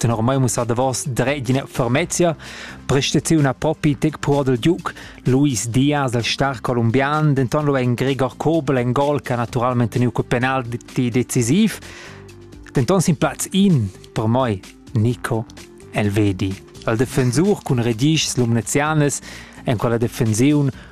Tenor mai mussà davos dret d'ina fermezia, prestaziuna propi tec pur dal Duke, Luis Diaz del star colombian, denton lu en Gregor Kobel en gol che ha naturalmente teniu col penalti decisiv. Denton sin platz in per moi Nico Elvedi. El defensur cun redischs lumnezianes en quella defensiun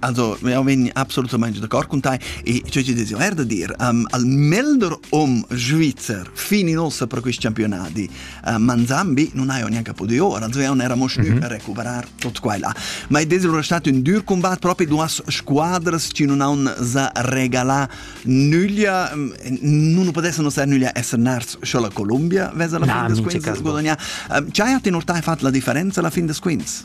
Also, eu vegn absolutamaing d'accord cun tai e ciò chi desi er da dir, um, al melder hom Svizzer fini nossa per quist campionadi uh, Manzambi non haio neanche podido ora, also eo n'era mosnü mm -hmm. per recuperar tot quella. Ma e desiro è stato un dur combat proprio duas squadras che non hanno za regala nüglia, mm, non potessero ser nüglia essere nars solo Colombia, vesa la fin des quints, guadagna. Um, c'hai a tener tai fatto la differenza la fin des quints?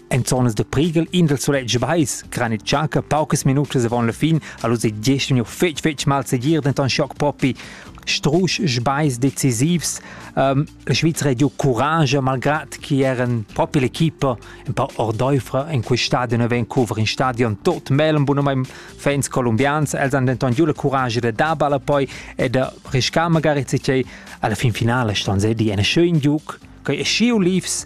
En zonas da prighel in dal sulegl vais cran il tschanca paucas minutas avon la fin allus ei gest vegniu fetg fetg mal segir denton schoc propi strusch sbais decisivs. Um, la Svizra ha giu courage malgrad che eran propi l'equipa un po ordoifra in quei stadion e Vancouver in stadion tot melem bunum fans colombians els han denton giu la courage da dar balla poi e da riscar magari tgei alla fin finale ston se di ein schön giuc quei e schiu Leafs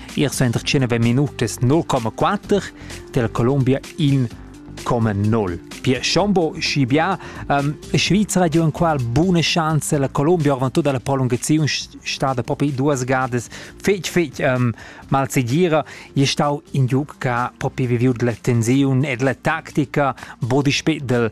Ir senter 19 minutas 0,4 del Columbia in 0,0. Pia Schombo schi bia um, Svizra di un qual bune chance la Columbia avant tutta la prolungazione stada propi duas gadas fetg fetg um, mal segira e stau in giug che ha propi viviu la tensione e la tactica bodi spet del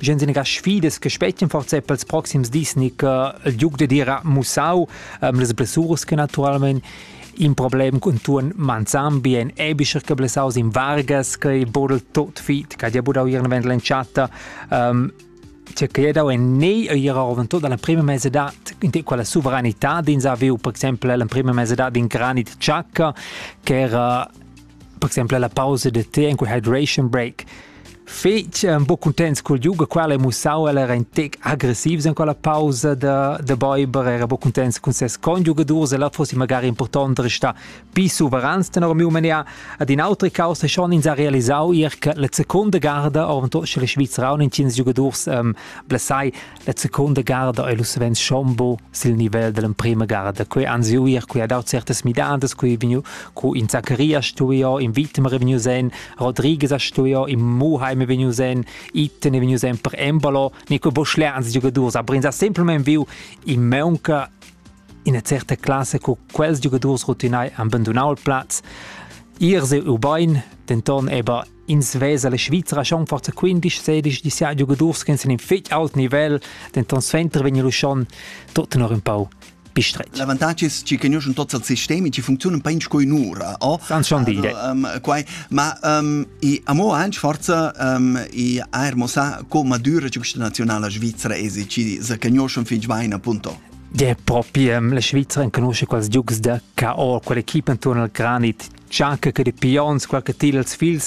Gen sina sfidas che spetgan forse per ils proxims dis ni che il giug da dira mussau ähm, las blessuras che naturalmente in problem con tuon manzan bien ebischer che blessaus in Vargas che bodel tot fit che dia budau ihren vent l'entschatta ähm, che che dau en nei ir oven tot dalla prima mesedad in te quella sovranità din sa viu per esempio la prima mesedad in granit ciacca che era per exempel la pausa da te en quei hydration break. Fetg um, bo contents col yoga qual è mussau el era in tec aggressivs en quella pausa da da Bäuber era bo contents con ses conjugadors e là fosse magari important de restare più soverans den euro mia ad in altre causa schon ins ha realisau ihr che la seconda garda avent sche la Svizzera und in cinque giocators um, blessai La seconda garda ei lu savens schombo sil nivel dall'emprema garda. Quei ansiuir, quei ha dau certas midadas, quei ei vegniu, co in Zaccaria stuiu, in Wittmer è vegniu sen, Rodriguez ha stuiu, in Muheim è vegniu sen, Itten è vegniu sen per Embolo. Ne quei Boschler ans giugadurs, aber ins ha semplament viu in Meunca in certa classe co quels giugadurs rotinai han abandonau il plaz. Ier se ubain, denton aber Ins vesa la Svizra schon forza 15-16 di sia giugadurs che sind in fitch alt nivel, denn tonst Fenter vegn lu schon tot nur un pau bistretg. L'avantatg è che conoscono tutti i sistemi che funzionano ben come un'ora. Oh? San schon dire. Um, quai. Ma um, i amo anche forza um, i aer mossà come dura questa nazionale svizzera è che se conoscono fin bene appunto. Ja, proprio la Svizzera conosce quasi giugs da K.O., quell'equipe intorno al Granit, anche che di Pions, qualche til als fils